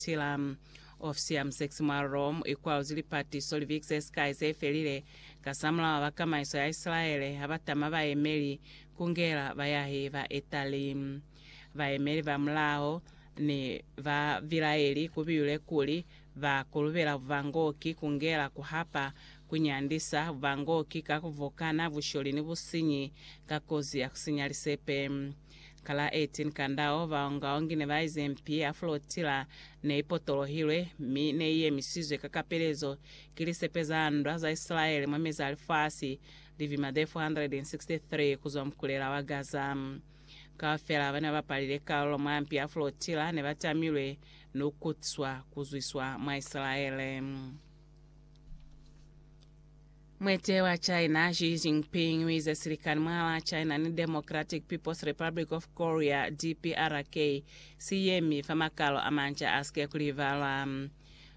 Tila. Ofisi ya musekisi mwa Rome ikwaluzi lipati so li vikize sikai ze felile. Kasamulaho ba kamaiso ya Isilaele ha ba tama bayemeli ku ngela bayahi ba Itali, bayemeli ba mulaho ni ba bilaeli ku biyule kuli ba kulubela bubangoki ku ngela ku hapa, ku nyandisa, bubangoki ka ku vokana, busholi ni businyi ka kozi ya ku sinya lisepe. Ka la 18 Kandao, baongaongi ne ba ize mpi ya Flotilla ne i potolohilwe, mi ne i yemisizwe ka kapelezo ki lisepe za ndwa za Isilaele mwa mezi a lifasi li vima ze 463 ku zwa mukulela wa Gaza. Kaufela ba ne ba palile kalulo mwa mpi ya Flotilla ne ba tamilwe ni ku kutswa ku zwiswa mwa Isilaele. Mwete wa China Xi Jinping uize silikani mwalaa China ni Democratic People's Republic of Korea, DPRK, siyemi fa makalo amanca asike kulibalwa.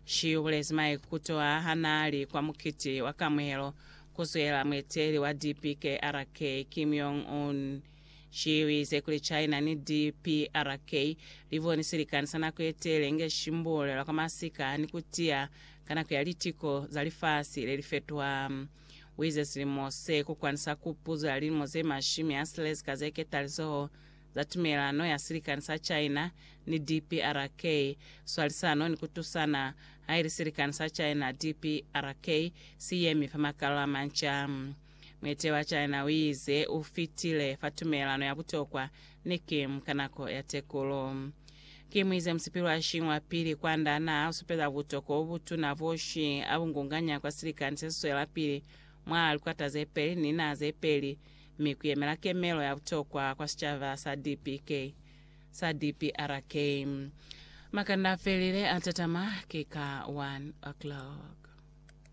Xi ubulezi maikuto aa hanaali kwa mukiti wa kamuhelo kuzwela mueteli wa DPKRK, Kim Jong Un. Ciiwize kuli China ni DPRK li boni silikani sa nako ye tele inge shimbulelwa kwa masika ni ku tiya ka nako ya litiko za lifasi le li fetwa. Wize silimo se ku kwani sa kupuzo ya lilimo ze mashimi a silezi ka ze ketalizoho za tumelelano ya silikani sa China ni DPRK, swalisano ni ku tusana, haili silikani sa China-DPRK si yemi fa makalolo a manca. Muete wa China uize ufitile fa tumelelano ya butokwa ni Kim ka nako ya tekulu. Kim uize musipili wa Xi wa pili kwanda naa usupeza butokwa bobutuna bo Xi abungunganya kwa silikani sesiswelapili mwa likwata zepeli ni linaha zepeli mi kuyemela kemelo ya butokwa kwa sicaba sa DPK, sa DPRK. Makanda afelile atatama ki ka 1:00.